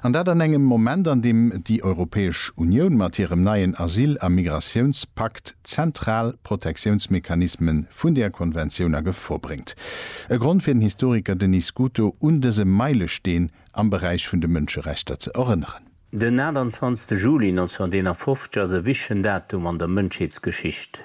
An dat an engem Moment, an deem déi Europäesch Unioun mat hirem neien Asyl a Migratiounspakt zentral Protektiounsmechanisme vun där Konventioun a Gefor bréngt. E Grond fir den Historiker Denis Scuto, un dëse Meilesteen am Beräich vun de Mënscherechter ze erënneren. Den 28 Juli 1951 ass e wichtegen Datum an der Mënschheetsgeschicht.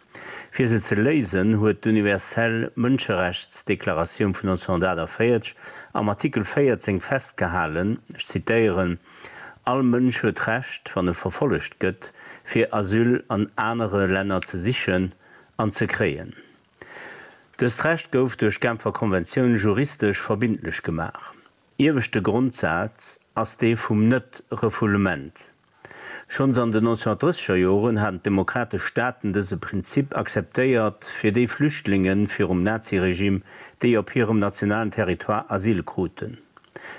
Fir se ze léisen, huet d'Universell Mënscherechtsdeklaratioun vun 1948 am Artikel 14 festgehalen, ech zitéieren, All Mënsch huet d'Recht, wann e verfollegt gëtt, fir Asyl an anere Länner ze sichen an ze kréien. Dëst Recht gouf duerch d'Genfer Konventioun juristesch verbindlech gemaach. Ieweschte Grondsaz ass dee vum Net-Refoulement. Schonns an den 1930er Joren haten d'demokratesch Staaten dëse Prinzip akzeptéiert fir déi Flüchtlinge virum Naziregimm, déi op hirem nationalen Territoire Asyl kruten.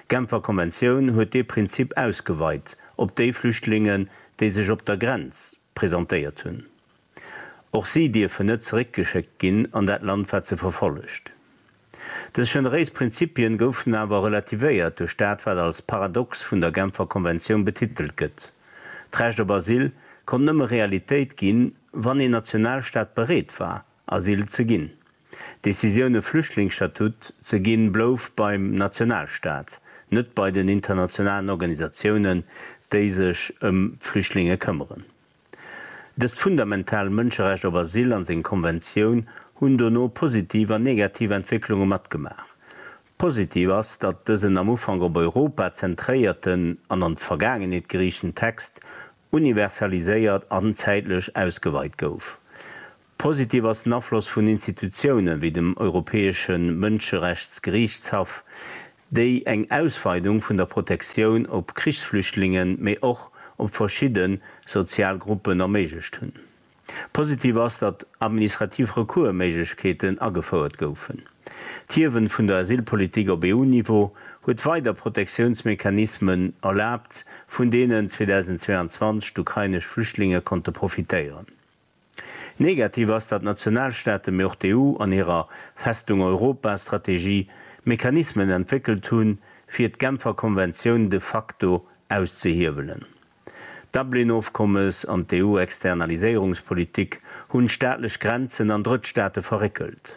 D'Genfer Konventioun huet dee Prinzip ausgeweit op déi Flüchtlinge, déi sech op der Grenz presentéiert hunn. Och si dierfen net zeréckgeschéckt ginn an dat Land, wat se verfollegt. Dës generéis Prinzipien goufen awer relativéiert duerch dat wat als Paradox vun der Genfer Konventioun betitelt gëtt, D'Recht op Asyl konnt nëmme Realitéit ginn, wann een Nationalstaat bereet war, Asyl ze ginn. D'Decisioun e Flüchtlingsstatut ze ginn blouf beim Nationalstaat, net bei den internationalen Organisatiounen, déi sech ëm d'Flüchtlinge këmmeren. Dëst fundamental Mënscherecht op Asyl an seng Konventioun hunn dono positiv an negativ Entwécklunge matgemaach. Positiv ass, datt dësen am Ufank op Europa zentréierten an an d'Vergaangenheet geriichten Text universaliséiert an zäitlech ausgeweit gouf. Positiv ass den Afloss vun Institutioune wéi dem Europäesche Mënscherechtsgeriichtshaff, déi eng Ausweidung vun der Protektioun op Krichsflüchtlingen, mee och op verschidde sozial Gruppen erméiglecht hunn. Positiv ass, datt administrativ Recours-Méiglechkeeten agefouert goufen. D'Hiewen vun der Asylpolitik op EU-Niveau huet weider Protektiounsmechanismen erlaabt, vun deenen 2022 d'ukrainesch Flüchtlinge konnte profitéieren. Negativ ass, datt d'Nationalstaaten, mee och d'EU an hirer Festung Europa Strategie Mechanismen entwéckelt hunn, fir d'Genfer Konventioun de facto auszehiewelen. D'Dublin-Ofkommes an d'EU-Externaliséierungspolitik hunn d'staatlech Grenzen an Drëttstaate verréckelt.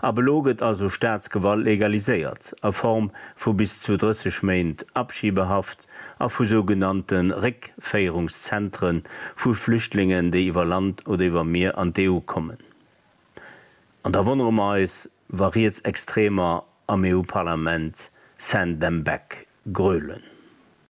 Ab elo gëtt also Staatsgewalt legaliséiert, a Form vu bis zu 30 Méint Abschiebehaft a vu sougenannte Réckféierungszentre vu Flüchtlingen, déi iwwer Land oder iwwer Mier an d'EU kommen. An da wonnere mer eis, wa Rietsextremer am EU-Parlament Send them back grölen.